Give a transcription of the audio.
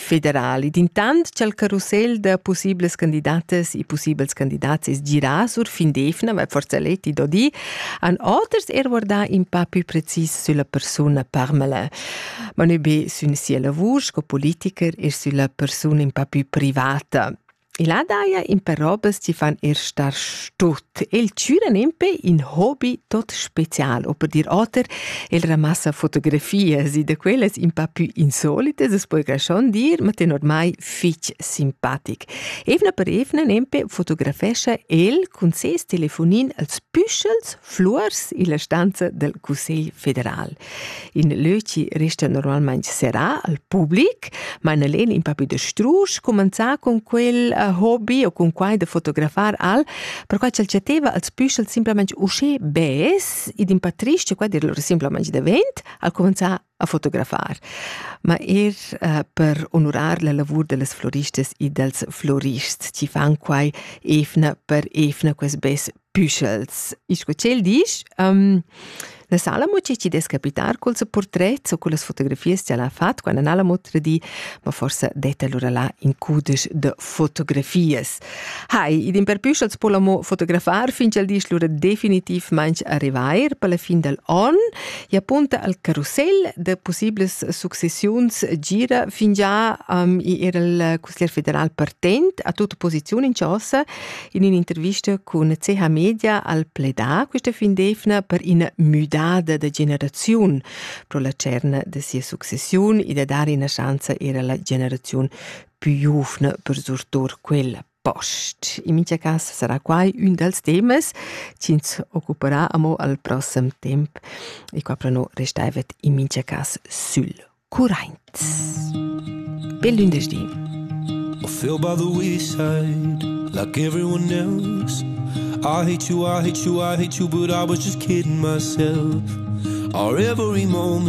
federali. D'intant cha'l carusel da pussiblas candidatas e pussibels candidats es girà sur fin d'eivna, ma forsa l'eti do di, han oters er guardà in pa pü precis sülla persuna Parmelin. Ma nö be sün sia lavur sco politiker, er sülla persuna in pa pü privata. E là daja impè robas chi fan er star stut. El chüran impè in hobby tot special, o per dir oter, el ramassa fotografias e da quellas in pa pü insolitas, as poja schon dir, ma tenor mai fich simpatic. Evna per evna nempe fotografescha el cun ses telefonin als püschels Fluors illa stanza del Cussegl federal. In löci resta normalmaing serrà al public, ma Annalena in papi da strusch cumanzà con quel uh, hobby o cun quai da fotografar al, perquai ch'el chatteva als püschels simplamaing uschè bes ed in pa trist che quai dir lur simplamaing davent, al cumanzà a fotografar, ma er eh, per onurar la lavur de las floristas e dels florists, chi fan quai efna per efna ques bes püschels. E sco cel disch, um, La sala mo ci des capitar col se portret o con las fotografies ce l'ha fat quando non l'ha mo tradi, ma forse detta allora là in cudes de fotografies. Hai, id imperpüschats po l'amo fotografar fin ch'el disch lura definitivmaing arrivair per la fin del on e apunta al carusel da possibles successiuns gira fingià um, i era il consiglier federal partent a tutta posiziun in chasa in un'intervista con CH Media al pledà questa fin d'efna per ina müdada da generaziun pro la cerna de sia successiun e da dare una chance era la generaziun pü giuvna per surtour quel post. In mincha cas sarà quai ün dals temas chi'ns occuperà amo al prossem temp e qua pro nu restaivet in mincha cas sül curraint. Bel lündeschdi! Feel by the wayside like everyone else. I hate you, I hate you, I hate you, but I was just kidding myself. Our every moment